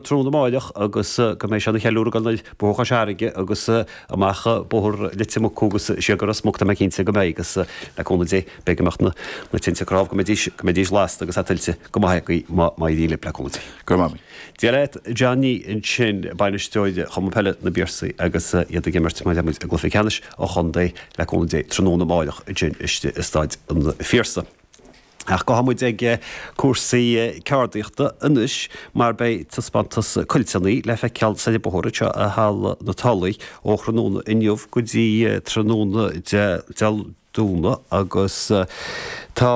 tráthnóna amáireach agus go mbeidh sé ina cheiliúradh againn ar Bhóthar Chois Fharraige agus amach Bóthar Leitir Mucú agus siar go Ros Muc tá mé cinnte go mbeidh agus le cúnamh Dé beidh imeacht na tinte cnámh go mbeidís go mbeidís lasta agus tuillte go maith againn má má éiríonn linn le cúnamh Dé. Go raibh maith agat. Dia leat Johnny ansin bainisteoir Chumann Peile na bPiarsaigh agus iad ag imirt mar a deirimid i gcluiche ceannais an chontae le cúnamh Dé tráthnóna amáireach ansin istigh i Staid an Phiarsaigh. Ach gabhfaidh muid ag cúrsaí ceardaíochta anois mar beidh taispeántas cuilteannaí le feiceáil soir an bóthar anseo i Halla na Tulaí ó thráthnóna inniu go dtí tráthnóna Dé Domhnaigh agus tá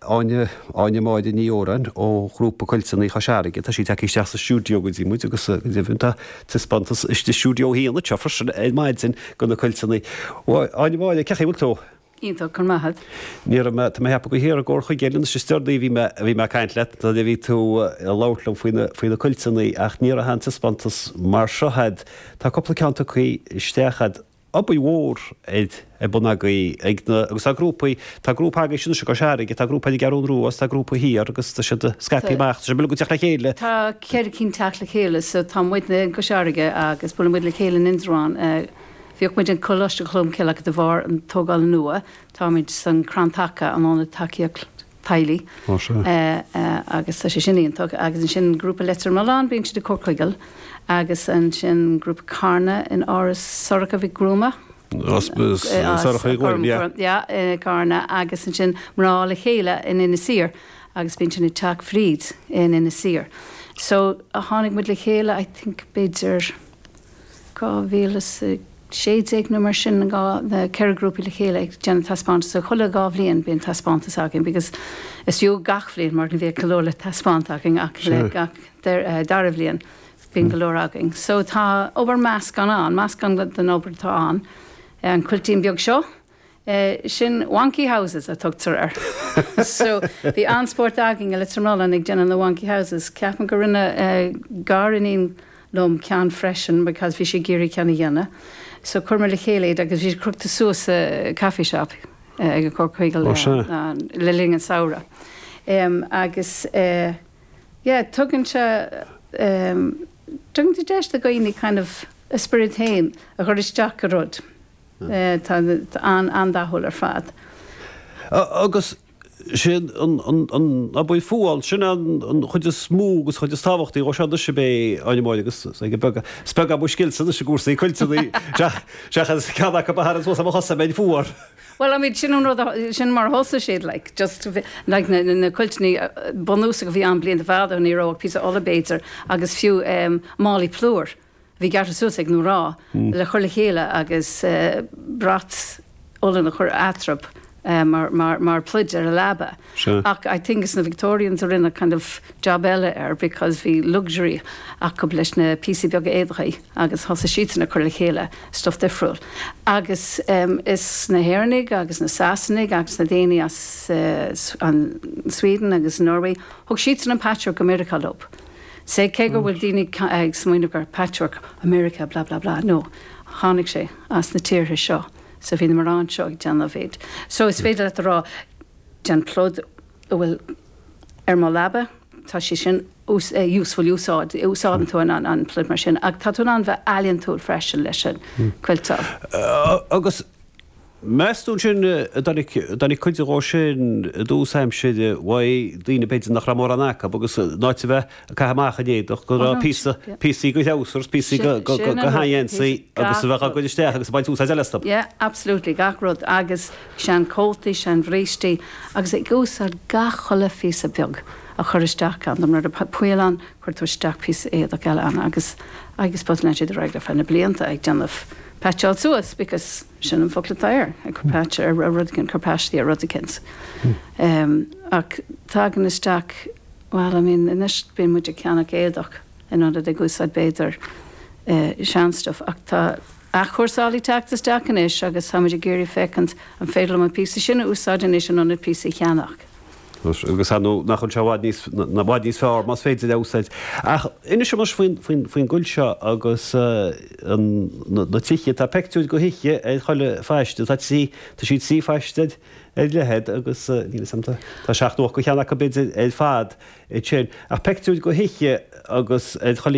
Áine Máire Ní Óráin ó Ghrúpa Cuilteannaí Chois Fharraige, tá sí tagtha isteach sa stiúideo go dtí muid agus go deimhin tá taispeántas i stiúideo 1 anseo freisin ar maidin de na cuilteannaí. Áine Máire, cén chaoi a bhfuil tú. Iontach, go raibh maith a'd. Ní raibh mé, tá mé ceapadh go haer i gcóir chuige eile, anois is deor daoibh a bhí mé, a bhí mé a' caint leat nuair a bhí tú a' labhairt liom faoi na, faoi na cuilteannaí ach ní raibh aon taispeántas mar seo a'd, tá cúpla ceann tugthaí isteach a'd, obair mhór atá ar bun agaibh, ag na, agus tá grúpaí, tá grúpa agaibhse anois i gCois Fharraige, tá grúpa ar an gCeathrú Rua is tá grúpa thiar agus tá siad a' scaipeadh Tá. amach, tá sé uilig ag teacht le chéile. Tá ceithre cinn 'teacht le chéile so tá muidne i gCois Fharraige agus buaileann muid le chéile in Indreabhán eh, Bhíodh muid ag Coláiste Cholm Cille ach de bharr an tógáil nua. Táimid san Crann Taca an Ionad Tacaíocht Teaghlaigh. Ó sea. Agus tá sé sin iontach. Agus ansin grúpa Leitir Mealláin, bíonn siad ag Comhar Chuigéal. Agus ansin grúpa Carna in Áras Sorcha Ní Ghuairim. Áras Sorcha Ní Ghuairim, yeah. Yeah, i Carna. Agus ansin mná le chéile in Inis Oírr. Agus bíonn sin ag teacht fríd in Inis Oírr. So tháinig muid le chéile, I think, b'fhéidir. 2016 nó mar sin na ceithre grúpaí le chéile ag déanamh taispeántas so chuile dhá bhliain bíonn taispeántas againn because is fiú gach bhliain mar go bhíodh go leor le taispeáint againn ach le gach dara bhliain bíonn go leor againn so tá obair meascán ann meascán den obair atá ann an cuiltín beag seo Sin Wonky Houses a tugtar air. So, bhí an-spórt againn i Leitir Mealláin ag déanamh na Wonky Houses. Ceapaim go rinne gariníon liom ceann freisin because bhí sí ag iarraidh ceann a dhéanamh. So, chuir muid le chéile iad agus bhí siad crochta suas sa coffee shop ag an Comhar Chuigéal le linn an samhradh. Agus, yeah, tugann sé, tugann sé deis do dhaoine kind of a spiorad féin a chur isteach i rud. Tá siad an-dathúil ar fad. Agus sin an obair fuáil, sin an chuid is mó agus an chuid is tábhachtaí dhó seo anois ab ea, Áine Máire, agus is beag, is beag mo scilse anois i gcúrsaí cuilteanna seachas ceann acu a tharraingt suas ar mo chosa dá mbeinn fuar. Bhuel, I mean sin an rud, sin mar a thosaigh siad like, just like na cuilteanna bunúsacha a bhí ann blianta fadó ní raibh ach píosa olla b'fhéidir agus fiú málaí plúir. Bhí gearrtha suas ag na mná le cur le chéile agus brat olann a chur eatrab mar pluid ar an leaba ach I think is na Victorians a rinne kind of job eile air because bhí luxury acu leis na píosaí beaga éadaigh agus thosaigh siadsan ag cur le chéile stuff difriúil agus is na hÉireannaigh agus na Sasanaigh agus na daoine as an Sweden agus Norway, thug siadsan an patchwork go Meiriceá leo. Sea, cé go bhfuil daoine ag smaoineamh gur patchwork America blah blah blah, no, tháinig sé as na tíortha seo, so bhí na mná anseo ag déanamh iad. So is féidir leat a rá, déan pluid a bhfuil ar mo leaba, tá sé sin useful, úsáid, úsáideann tú an pluid mar sin, ach tá tú in ann bheith ealaíontúil freisin leis an, cuilteáil. Agus. Meastú ansin an dtáinig cuide dhó sin i dtús aimsire bhíodh daoine b'fhéidir nach raibh mórán acu agus in áit a bheith ag caitheamh amach an t-éadach go raibh píosa, píosaí go threabhsar agus píosaí go go sheangheansaí agus a bheadh á gcur isteach agus ag baint úsáid eile astu. Yeah, absolutely, gach rud agus sean cótaí, sean bhrístí agus ag úsáid gach chuile phíosa beag a chur isteach ann, nuair atá poill ann cuir tú isteach píosa éadach eile ann agus I just suppose lean siad ar aghaidh ar feadh na blianta ag déanamh, paitseáil suas because. Sin an focal atá air, obair phaistí nó rud eicínt. Ach tagann isteach, bhuel, I mean, anois bíonn muid ag ceannach éadach in ionad ag úsáid b'fhéidir sean stuff ach tá athchúrsáil ag teacht isteach anois agus táimid ag iarraidh féachaint an féidir liom an píosa sin a úsáid anois in ionad píosa a cheannach. Agus ar ndóigh nach bhfuil sé i bhfad níos, i bhfad níos fearr, más féidir é a úsáid. Ach inis dhom anois faoin, faoin, faoin gcuilt seo agus an, na, na tithe. Tá peictiúir go thithe ar chuile phaiste. Tá trí, tá sí trí phaiste ar, ar leithead agus níl 'fhios a'm, tá, tá seacht nó ocht go cheanna acu b'fhéidir ar fad ansin. Ach peictiúir go thithe agus ar chuile.